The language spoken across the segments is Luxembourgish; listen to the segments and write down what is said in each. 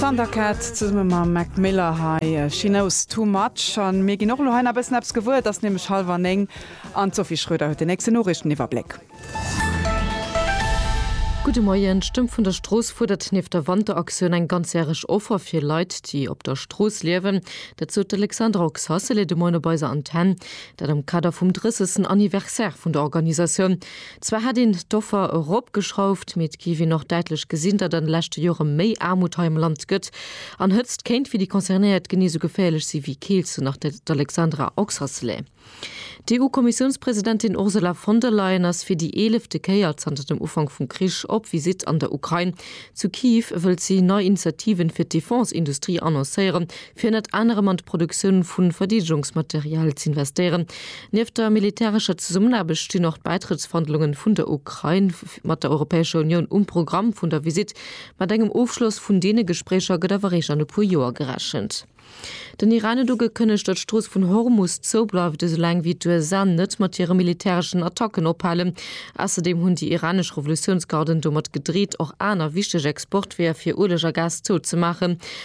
Thundercat zesumme mam Mac Miller hei She Knows Too Much. An mir ginn och elo hei nach bëssen eppes gewuer. Et ass nämlech hallwer néng an d'Sophie Schröder huet den nächsten Noriichteniwwerbléck. Gudde Moien, d'Stëmm vun der Strooss fuerdert nieft der Wanteraktioun eng ganzjäreg Offer fir Leit, déi op der Strooss liewen. Dat sot d'Alexandra Oxacelli de Moien op eiser Antenn, dat am Kader vum 30. Anniversaire vun der Organisatioun. Zwar hätt een d'Offer eropgeschrauft, mee et géif een och däitlech gesinn, datt an de leschte Jore méi Aarmut hei am Land gëtt. An Hëtzt kéint fir déi Concernéiert genee sou geféierlech si wéi Keelt, sou nach d'Alexandra Oxacelay. D'EU-Kommissiounspresidentin Ursula von der Leyen ass fir déi eelefte Kéier zanter dem Ufank vum Krich op Visitt an der Ukrain. Zu Kyiv wëllt si nei Initiativen fir d'Defense-Industrie annoncéieren, fir ënnert anerem an d'Produktioun vu Verdeedegungsmaterial ze investéieren. Nieft der militärescher Zesummenaarbecht stinn och d'Bäitrëttsverhandlunge vun der Ukrain mat der Europäescher Unioun um Programm vun der Visitt. Mat engem Ofschloss vun deene Gespréicher gëtt awer réischt an e puer Joer gerechent. Den Iran huet ugekënnegt, datt d'Strooss vun Hormus zoubleift, esou laang wéi d'USA net mat hire militäreschen Attacken ophalen. Ausserdeem hunn déi iranesch Revolutiounsgarden domat gedreet, och aner wichteg Exportweeër fir Ueleg a Gas zouzemaachen.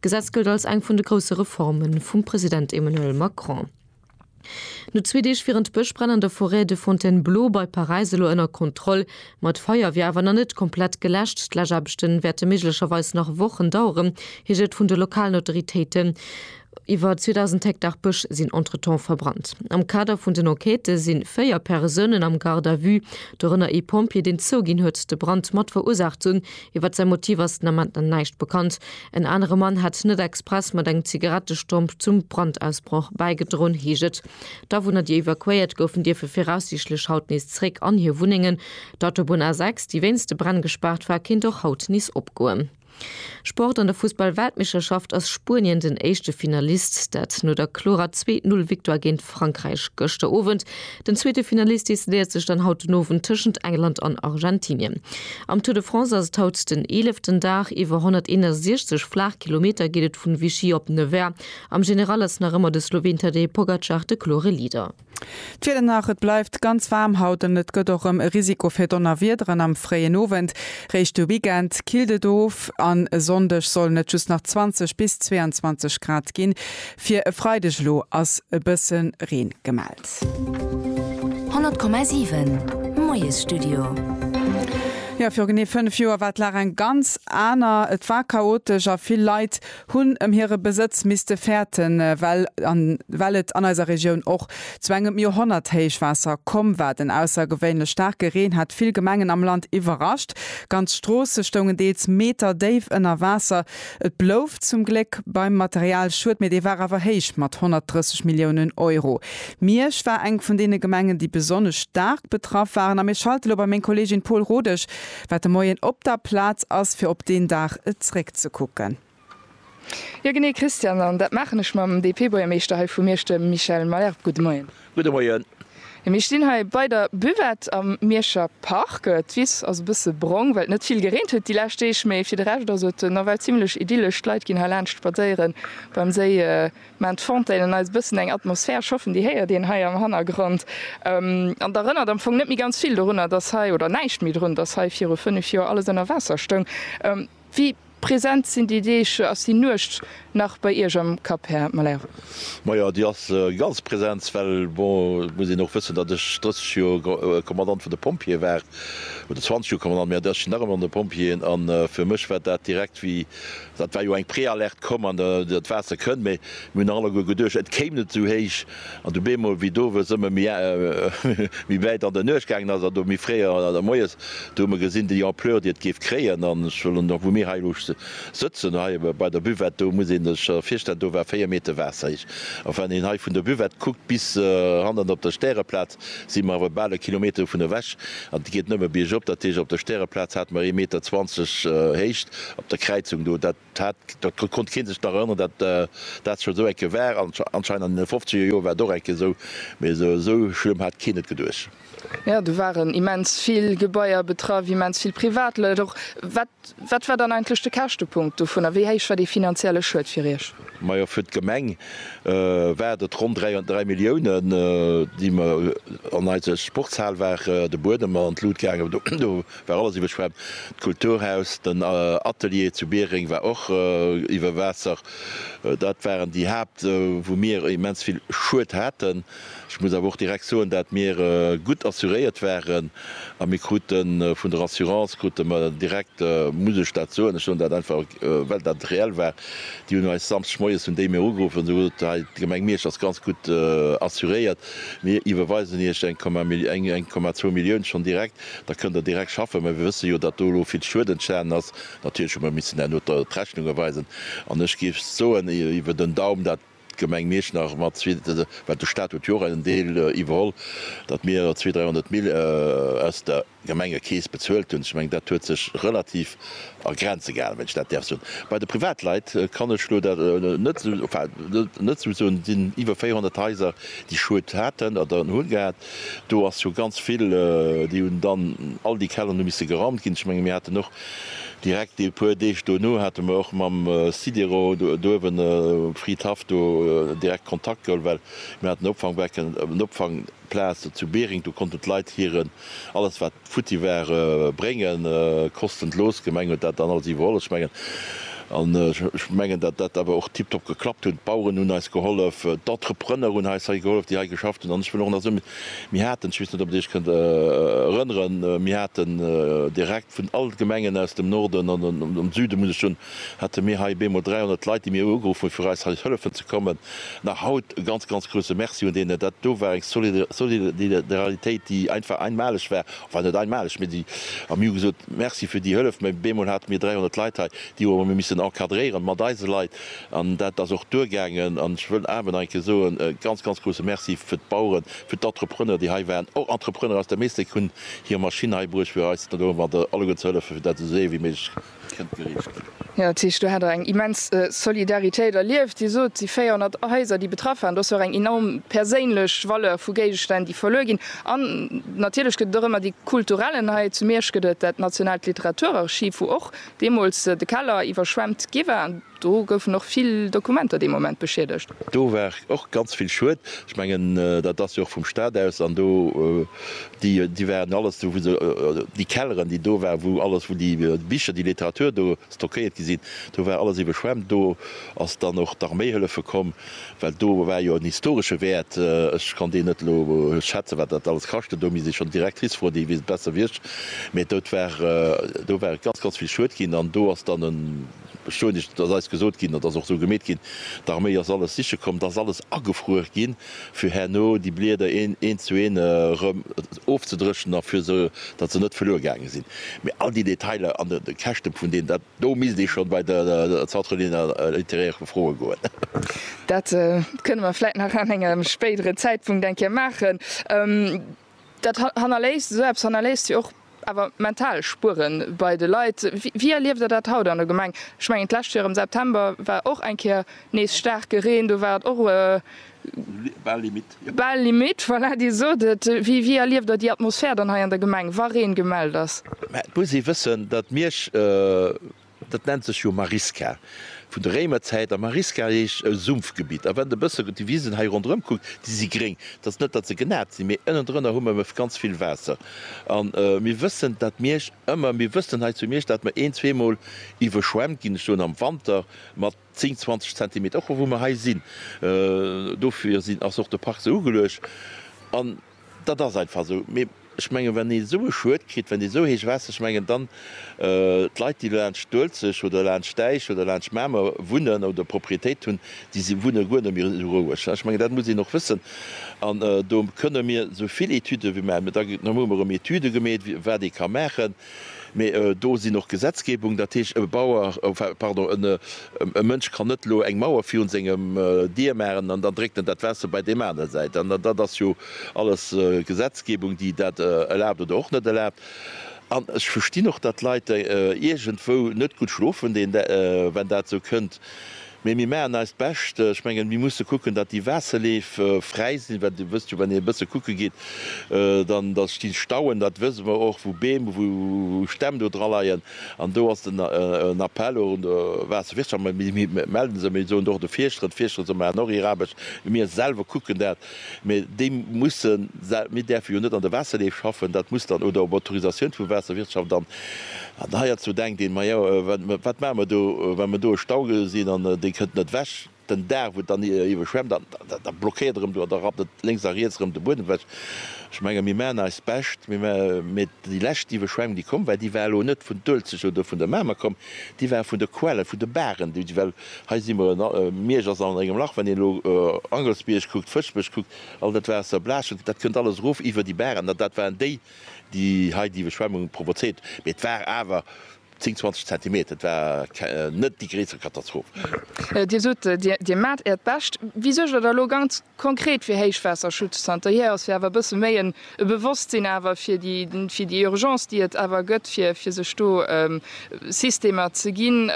D'Gesetz gëllt als eng vun de grousse Reforme vum President Emmanuel Macron. No zwee Deeg wieren d'Bëschbränn an der Forêt de Fontainebleau bei Paräis elo ënner Kontroll. Ma d'Feier wier awer nach net komplett geläscht. D'Läschaarbechte wäerte méiglecherweis nach Wochen daueren, heescht et vun de lokalen Autoritéiten. Iwwer 2.000 Hektar Bësch sinn entretemps verbrannt. Am Kader vun den Enquêtë si véier Persounen am Garde à vue, dorënner ee Pompjee, deen zouginn huet, de Brand mat verursaacht ze hunn. Iwwer säi Motiv ass den Ament nach näischt bekannt. En anere Mann hätt net express mat engem Zigarettestomp zum Brandausbroch bäigedroen, heescht et. D'Awunner, déi evakuéiert goufen, dierfe viraussiichtlech haut nees zeréck an hir Wunnengen. D'Autobunn A6, déi wéinst de Bränn gespaart war, kéint och haut nees opgoen. Sport, An der Fussball-Weltmeeschterschaft ass Spuenien den éischte Finalist, dat no der klorer Zweet-Null-Victoire géint Frankräich gëschter Owend. Den zweete Finalist decidéiert sech dann haut den Owend tëschent England an Argentinien. Am Tour de France ass et haut den eeleften Dag. Iwwer 161 flaach Kilometer geet et vun Vichy op Nevers. Am General ass nach ëmmer de Sloween Tadej Pogacar de klore Leader. D'Wieder nach, Et bleift ganz waarm haut an et gëtt och rem e Risiko fir Donnerwiederen am fréien Owend. Réischt de Weekend killt et of an e Sonndeg sollen et just nach 20 bis 22 Grad ginn. Fir e Freideg elo ass e bësse Reen gemellt. 100,7 Moiesstudio. Jo, viru genee 5 Joer war d'Lag eng ganz aner. Et war chaotesch a vill Leit hunn ëm hire Besëtz misste fäerten, well an well et an eiser Regioun och zu engem Joerhonnerthéichwaasser komm war. Den aussergewéinlech staarke Reen hat vill Gemengen am Land iwwerrascht. Ganz Stroosse stoungen deels Meter déif ënner Waasser. Et blouf zum Gléck beim Materialschued, mee dee war awer héich mat 130 Milliounen Euro. Miersch war eng vun deene Gemengen, déi besonnesch staark betraff waren a mir schalte lo bei meng Kolleegin Paul Rodesch, wat de Moien op der Plaz ass, fir op deen Dag zeréckzekucken. Jo genee, Christian, an dat maachen ech mam DP-Buergermeeschter hei vu Miersch, dem Michel Mayer. Gudde Moien. Gudde Moien. Mir stinn hei bei der Buvette am Mierscher Park. D'Wiss ass e bësse brong, well et net vill gereent huet déi lescht Deeg, mee fir de Rescht ass et nawell zimmlech idyllesch. D'Leit ginn heilaanscht spadséiere beim Séi, maachen d'Fontainen eis e bëssen eng Atmosphär. Ech hoffen, Dir héiert een hei am Hannergrond an d'erënnert am Fong net méi ganz vill dorunner, dass hei, oder näischt méi drun, dass hei viru fënnef Joer alles ënner Waasser stoung. Wéi present sinn déi Deeg ass déi Nuecht nach bei Iech am Kapp, Här Malherbe? Majo, déi ass ganz present, well bon, et muss een och wëssen, datt ech 30 Joer Kommandant vun de Pompjeeë war, oder 20 Joer Kommandant, mä ech sinn nach ëmmer an de Pompjeeën. A fir mech war dat direkt wéi, dat war jo eng Prealerte komm an dat Waasser kënnt, mä mir hunn nach alleguer geduecht, et kéim net esou héich. An du bemol, wéi d'Owes ëmmer méi wäit an der Nuecht gaangen ass, an do méi fréier an der Moies, do hu mer gesinn, déi Ampleur, déi et géif kréien. An ech wëll elo, wou mir hei elo sëtzen, hei bei der Buvette, do muss een sech virstellen, do war véier Meter Waasser héich. A wann een hei vun der Buvette kuckt bis hannen op der Stäreplaz, si mer awer bal e Kilometer dovun ewech. An et geet nëmme biergop. Dat heescht, op der Stäreplaz hate mer ee Meter zwanzeg Héicht op der Kräizung do. Dat. Dat konnt keen sech nach erënneren, dat dat scho sou eng Kéier war. Anscheinend an deene fofzeger Joer war et och eng Kéier sou, mee sou schlëmm hat keen et geduecht. Jo, do waren immens vill Gebaier betraff, immens vill Privatleit och. Wat wat war dann eigentlech de Käschtepunkt dovunner? Wéi héich war dee finanzielle Schued fir Iech? Majo, fir d'Gemeng waart et ronn dräi dräi Milliounen, déi mer an eise Sportshal war de Buedem an d'Lut gaangen. Do War alles iwwerschwemmt. D'Kulturhaus, den Atelier zu Biereng war och iwwer Waasser. Dat waren déi Haapt, wou mir immens vill Schued haten. Ech muss awer och direkt soen, dat mir gutt assuréiert waren a mir kruten vun der Assurance krute mer direkt, muss ech dat soen, ech soen dat einfach well dat reell war, déi hunn eis Samschdeg moies hunn déi mir ugeruff an hu gesot, hei d'Gemeng Miersch ass ganz gutt assuréiert, mir iwwerweisen Iech eng Komma zwou Millioun schonn direkt. Da kënnt Der direkt schaffen. Mä mir wësse jo, datt do elo vill Schued entstanen ass. Natierlech hu mer missen herno d'Rechnunge weisen. An ech géif soen, iwwer den Daum, dat d'Gemeng Mierschnach mat zwee, well de Stat huet jo och en Deel iwwerholl, datt mir zwee, dräihonnert Mill aus der Gemengekeess bezuelt hunn. Ech mengen, dat huet sech relativ a Grenze gehalen, wann ech dat däerf soen. Bei de Privatleit kann ech elo dat net, enfin net esou soen. Et sinn iwwer 400 Haiser, déi Schued haten oder hunn gehat. Do ass jo ganz vill, déi hunn dann, all déi Kelleren hu misse geraumt ginn. Ech menge mir haten och direkt e puer Deeg dono hate mer och mam Sidero d'uewen, Frid Haff, do direkt Kontakt geholl, well mir haten e Opfangbecke, en Opfangplaz zu Bering, do konnten d'Leit hiren, alles wat, futti ware bréngen koschten. D'Loos Gemeng huet dat dann alles iwwerholl. Ech mengen, an ech mengen, datt dat awer och tiptop geklappt hunn. D'Baueren hunn eis gehollef, d'Entrepreneur hunn eis hei gehollef, déi hei geschafft hunn. An ech wëll och nach soen, mir haten, ech weess net, ob Der Iech kënnt erënneren, mir haten direkt vun all d'Gemengen aus dem Norden an dem Süden, muss ech soen, hate mir hei bemol 300 Leit, déi mir ugeruff hunn, fir eis hei hëllefen ze kommen. Nach haut e ganz, ganz grousse Merci un deenen. Dat do war eng Solidaralitéit, déi einfach einmaleg war, enfin net einmaleg, mee déi, a mir hu gesot, Merci fir déi Hëllef. Mä bemol hate mir 300 Leit hei, déi hu mir missen encadréieren mat eise Leit, an dat ass och duergaangen. An ech wëll awer nach eng Kéier soen, e ganz, ganz grousse Merci fir d'Baueren, fir d'Entrepreneur, déi hei waren, och Entrepreneur aus der Mestec hunn hir Maschinn hei bruecht, fir eis do alleguer ze hëllefen, fir dat esou séier wéi méiglech kënnt gereecht ginn. Jo, dat heescht, do hat Der eng immens Solidaritéit erlieft. Dir sot, déi 400 Haiser, déi betraff waren, do ass jo och eng enorm perséinlech Valeur vu Géigestänn, déi verluer ginn. An natierlech gëtt et och ëmmer déi kulturellen, hei zu Miersch gëtt et dat nationaalt Literaturarchiv, wou och deemools de Keller iwwerschwemmt gi war. Do goufen och vill Dokumenter dee Moment beschiedegt. Do war och ganz vill Schued. Ech mengen, dat ass jo och vum Staat aus. An do, déi, déi waren alles do, wou se, déi Kelleren, déi do waren, wou alles, wou déi Bicher, déi Literatur do stockéiert gi sinn, do war alles iwweschwemmt. Do ass dann och d'Arméi hëllefe komm, well do war jo en historesche Wäert. Ech kann deen net elo schätzen, wat dat alles kascht huet. Do misst ee schonn d'Directrice froen, déi weess et besser wéi ech. Mee do war, do war ganz, ganz vill Schued ginn. An do ass dann e. Verstoen ech, et ass eis gesot ginn, dat ass och esou gemeet ginn, d'Arméi ass alles siche komm, et ass alles agefruer ginn, fir herno déi Blieder een zu een erëm ofzedréchnen a fir se, datt se net verluer gaange sinn. Mee all déi Detailer an de Käschte vun deenen, dat do misst ee schonn bei de Centre littéraire froe goen. Dat kënne mer vläicht nach an engem spéidere Zäitpunkt eng Kéier maachen. Dat hannerléisst, esou eppes hannerléisst jo och awer mental Spueren bei de Leit. Wéi erlieft der dat haut an der Gemeng? Ech mengen d'lescht Joer am September war och eng Kéier nees staarke Reen, do war et och bal limite. Voilà, Dir sot et, wéi erlieft der déi Atmosphär dann hei an der Gemeng, wa Reen gemellt ass? Mä et muss ee wëssen, datt Miersch Dat nennt sech jo Marisca vun der Réimerzäit. A Marisca heescht e Sumpfgebitt. A wann de e bësse déi Wisen hei ronderëm kuckt, déi si gréng. Dat ass net, datt se genat sinn, mee ënnendrënner hu mer ganz vill Waasser. A mir wëssen, datt Miersch ëmmer, mir wëssen hei zu Miersch, datt mer een-, zweemol iwwerschwemmt ginn, ech soen am Wanter, mat. 10, 20 Zentimeter, och wou mer hei sinn. Dofir sinn, ass och de Park esou ugeluecht. An dat ass einfach esou. Mee ech mengen, wann ee esou e Schued kritt, wann ee esou héich Waasser, ech mengen dann, d'Leit, déi do laanscht d'Uelzecht oder laanscht d'Äisch oder laanscht Mamer wunnen oder Proprietéit hunn, déi si wunne guer net méi esou roueg. Ech mengen, dat muss een och wëssen. An do kënne mir esou vill Etüde wéi mer, da hu mer erëm Etüde gemeet, wat ee ka maachen. Mee do sinn och Gesetzgebungen, dat heescht e Bauer, pardon, e Mënsch kann net elo eng Mauer virun sengem Dier maachen an dann dréckt en dat Waasser bei deem aner Säit an. Dat ass jo alles Gesetzgebung, déi dat erlaabt oder och net erlaabt. An ech verstinn och, datt Leit iergendwou net gutt schlofen, deen, well dat esou kënnt. Mee mir maachen eist Bescht. Ech mengen, mir musse kucken, datt déi Waasserleef fräi sinn, well Dir wësst jo, wann een e bësse kucke geet, dann da sti Stauen, dat wësse mer och, wou Beem, wou Stämm do draleien. An do ass den Appell och un de Waasserwirtschaft, mir mellen se, mee soen et och de Fierschteren, d'Fierschteren, se maachen och hir Aarbecht, mee mir selwer kucken dat, Mä déi mussen, mir däerfe jo net an der Waasserleef schaffen, dat muss dann, oder op Autorisatioun vu Waasserwirtschaft. An heierzu denkt een, ma jo, wat maache mer do, wa mer do e Stau gesinn an dee kënnt net ewech, den Dag wou et dann iwwerschwemmt, an da blockéiert erëm do an da rappt et lénks a riets erëm de Buedem ewech. Ech menge mir maachen eist Bescht, mä déi lescht Iwwerschwemmung déi komm war, déi war elo net vun d'Uelzecht oder vun der Mamer komm, déi war vun de Quellen, vun de Baren, déi well Hei si mer, Miersch ass an engem Lach, wann een elo Angelsbierg kuckt, Fëschbech kuckt, all dat Waasser, Blaschent, dat kënnt alles erof iwwer déi Baren, an dat waren déi, déi hei déi Iwwerschwemmung provozéiert, mee et war awer 10, 20 Zentimeter, et war net déi gréisser Katastroph. Dir sot, Dir maacht Äert Bescht. Wéi suergt Der da elo ganz Konkret fir Héichwaasserschutz. Zanter hier ass jo awer e bësse méi en Bewosstsinn awer fir déi Urgence, déi et awer gëtt, fir sech do Systemer ze ginn.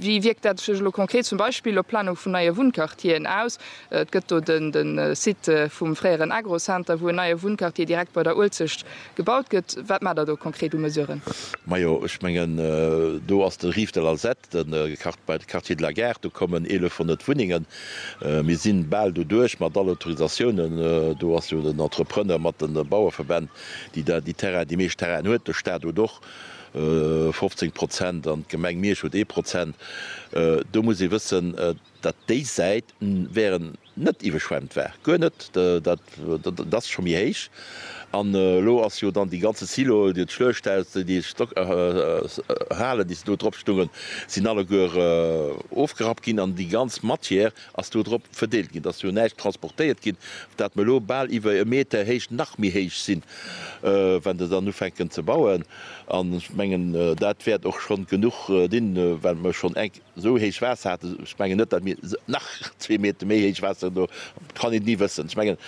Wéi wierkt dat sech elo konkret zum Beispill op d'Planung vun neie Wunnquartieren aus? Et gëtt do de Site vum fréieren Agro-Center, wou en neie Wunnquartier direkt bei der Uelzecht gebaut gëtt. Wat maacht Der do konkret u Mesuren? Majo, ech mengen, do ass de Rive de l'Alzette, De Quartier de la Gare, do kommen 1.100 Wunnengen. Mir si bal doduerch mat all Autorisatiounen. Do ass jo den Entrepreneur mat de Baueverbänn, déi da déi Terrainen, déi meescht Terrainen huet. De Staat huet och 15 Prozent an d'Gemeng Miersch huet ee Prozent. Do muss ee wëssen, datt déi Säit wären, net iwweschwemmt war, guer net, dat ass scho méi héich an elo ass jo dann déi ganze Silo, d'Schluechthaus, déi Halen déi se do drop stungen, sinn alleguer ofgerappt ginn an déi ganz Matière ass do drop verdeelt ginn, et ass jo näischt transportéiert ginn, dat mer elo bal iwwer e Meter héich nach méi héich sinn, wann der dann ufänken ze bauen an ech mengen dat wäert och schonn genuch dinn, well mer schonn enk. Esou héich Waasser hat, ech mengen net, datt mir nach zwee Meter méi héich Waasser hunn, do kann een et ni wëssen. Ech mengen,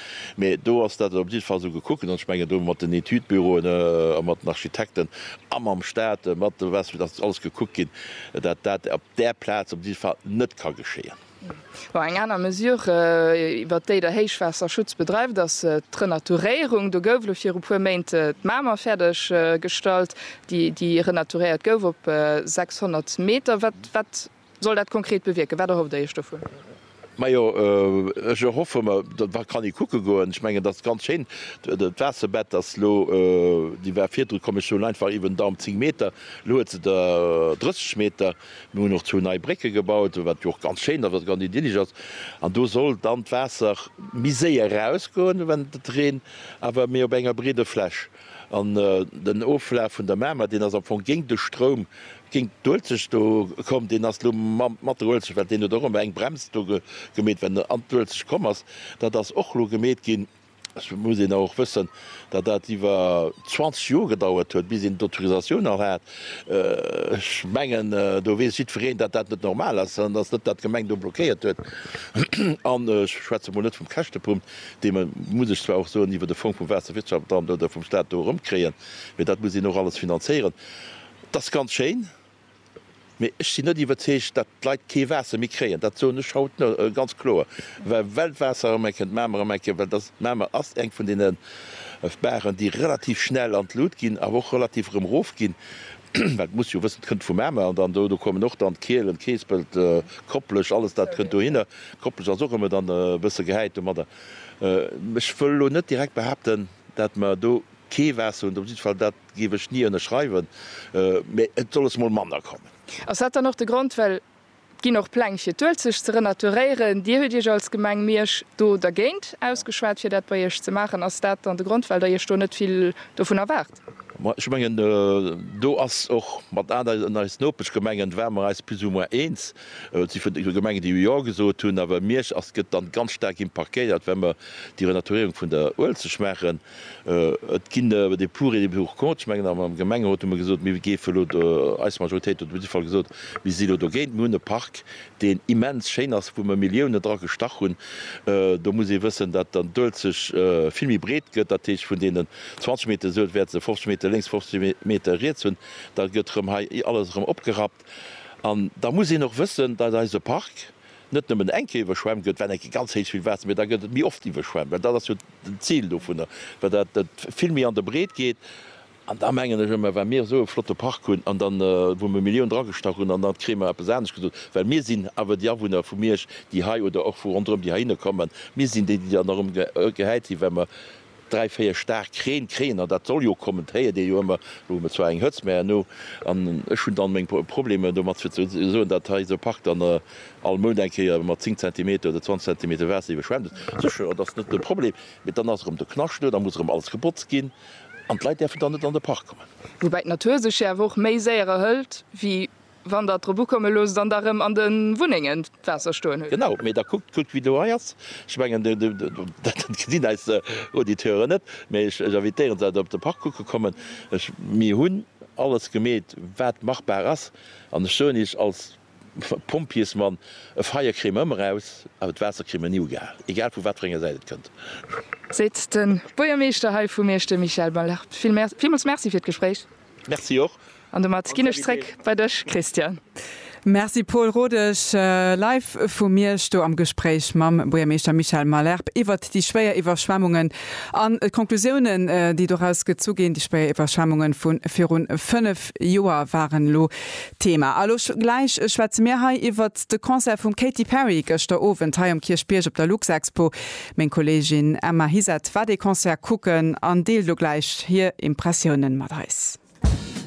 mä do ass dat op jidde Fall esou gekucken, an ech mengen do mat den Etüdbüroen a mat den Architekten a mam Staat, mat de Waasser, datt alles gekuckt ginn, datt dat op där Plaz op jidde Fall net ka geschéien. Eng aner Mesure, iwwert déi der Héichwaasserschutz bedreift, ass d'Renaturéierung. Do gouf elo viru puer Méint d'Mamer fäerdeg gestallt, déi renaturéiert gouf op 600 Meter. Wat soll dat konkret bewierken? Wat erhofft Dir Iech dovun? Majo, ech erhoffe mer, datt mer kann ee kucke goen. Ech mengen, et ass ganz schéin, d'Waasserbett ass elo, déi war virdru, komm ech soen einfach, iwwen den Daum 10 Meter, elo huet se der 30 Meter. Mir hunn och zwou nei Brécke gebaut, wat jo och ganz schéin ass, wat ganz idyllisch ass. An do soll dann d'Waasser méi séier erausgoen, wann et reent, awer méi op enger breeder Fläch. An den Oflaf vun der Mamer, deen ass am Fong géint de Stroum, géint d'Uelzecht do komm. Deen ass elo mat der Uelzecht, well deen huet och ëmmer eng Brems do gemeet, wann en an d'Uelzecht komm ass. Dat ass och elo gemeet ginn. Et muss een awer och wëssen, datt dat iwwer 20 Joer gedauert huet, bis een d'Autorisatioun och hat. Ech mengen, do weess jiddwereen, datt dat net normal ass an datt net dat d'Gemeng do blockéiert huet. An ech schwätze mol net vum Käschtepunkt, dee mer, muss ech zwar och soen, iwwer de Fong vum Waasserwirtschaftsamt oder vum Stat do erëmkréien, mee dat muss een och alles finanzéieren. Dat ass ganz schéin, Mee ech sinn net iwwerzeegt, datt d'Leit kee Waasser méi kréien. Dat soen ech haut ganz kloer, well well d'Waasser erëm eng Kéier d'Mamer erëm eng Kéier, well dass d'Mamer ass eng vun deene Baren, déi relativ schnell an d'Lut ginn, awer och relativ erëm erofginn, well muss jo wëssen, d'kënnt vum Mamer an dann do do kommen och dann d'Kielen, Keespelt, Kopplech, alles dat kënnt dohinner. Kopplech ass och ëmmer dann e bësse gehäit domadder. Ech wëll elo net direkt behaapten, datt mer do kee Waasser hunn, dat op jiddwer Fall dat. Géif ech nie ënnerschreiwen, mä et soll es mol manner kommen. Ass dat dann och de Grond, well et ginn och Pläng fir d'Uelzecht ze renaturéieren, Dir huet Iech als Gemeng Miersch do dergéint ausgeschwat fir dat bei Iech ze maachen, ass dat dann de Grond, well Der Iech do net vill dovun erwaart? Ma ech mengen do ass och mat aneren, eis Nopeschgemengen, ware mer eis plus ou moins eens. Et si verschidde Gemengen déi jo gesot hunn, awer Miersch ass, gëtt dann ganz staark impactéiert, well mer déi Renaturéierung vun der Uelzecht maachen. Et ginn des pour et des pour contre. Ech mengen, am Gemengerot hu mer gesot, mir géife elo, eis Majoritéit huet op jidde Fall gesot, mir si elo dogéint. Mir hunn e Park, deen immens schéin ass, wou mer Milliounen dra gestach hunn. Do muss ee wëssen, datt dann d'Uelzecht vill méi breet gëtt. Dat heescht, vun deenen 20 Meter Suel wäerte se 50 Meter lénks, 50 Meter riets hunn. Da gëtt erëm hei alles erëm opgerappt. An da muss een och wëssen, dat eise Park, net nëmmen eng Kéier iwwerschwemmt gëtt, well eng Kéier ganz héich vill Waasser, mee da gëtt et méi oft iwwerschwemmt, well dat ass jo den Zil dovunner, well dat vill méi an der Breet geet. An da mengen ech ëmmer, wa mir esou e flotte Park hunn an dann, wou mir Millioune dragestach hunn, an da kritt mer eppes anescht gesot, well mir sinn awer déi Awunner vu Miersch, déi hei oder och vu ronderëm, déi heihinner kommen, mir sinn déi, déi dann erëm gehäit ginn, well mer Dräi, véier staark Reen, Kréiner, dat soll jo kommen, dat héiert ee jo ëmmer. Elo hu mer zwar eng Hëtzt, mä herno, an ech hunn dann meng Problemer domat, fir ze soen, datt hei esou e Park dann all Mount eng Kéier mat zéng Zentimeter oder zwanzeg Zentimeter Waasser iwwerschwemmt ass. Sécher, dat ass net de Problem, mee dann ass erëm de Knascht do, da muss erëm alles gebotzt ginn an d'Leit däerfen dann net an de Park kommen. Woubäi d'Natur sech jo awer och méi séier erhëlt wéi Wann der drop ukomme loosst an da rëm an de Wunnengen d'Waasser stoen hutt. Genau, mee da kuckt gutt wéi do hei ass. Ech mengen, dat gesinn eis Auditeuren net, mee ech invitéieren se op de Park kucke kommen. Mir hunn alles gemeet wat machbar ass an ech soen Iech als Pompjeesmann, e Feier kréie mer ëmmer eraus, awer d'Waasser kréie mer ni ugehal, egal vu wat fir enger Säit et kënnt. Seet de Buergermeeschter hei vu Meesch, de Michael Balart. Villmools Merci fir d'Gespréich. Merci och. An domat ginn ech zréck bei dech Christian. Merci Paul Rodesch. Live vu Miersch do am Gespréich mam Buergermeeschter Michel Malherbe iwwert déi schwéier Iwwerschwemmungen an d'Conclusiounen déi doraus gezu ginn. Déi schwéier Iwwerschwemmungen vu virun 5 Joer waren elo Thema. A lo gläich schwätze mir hei iwwert de Concert vum Katy Perry gëschter Owend hei um Kierchbierg op der Luxexpo. Meng Kollegin Emma Hiset war dee Concert kucken an deelt elo gläich hir Impressiounen mat eis.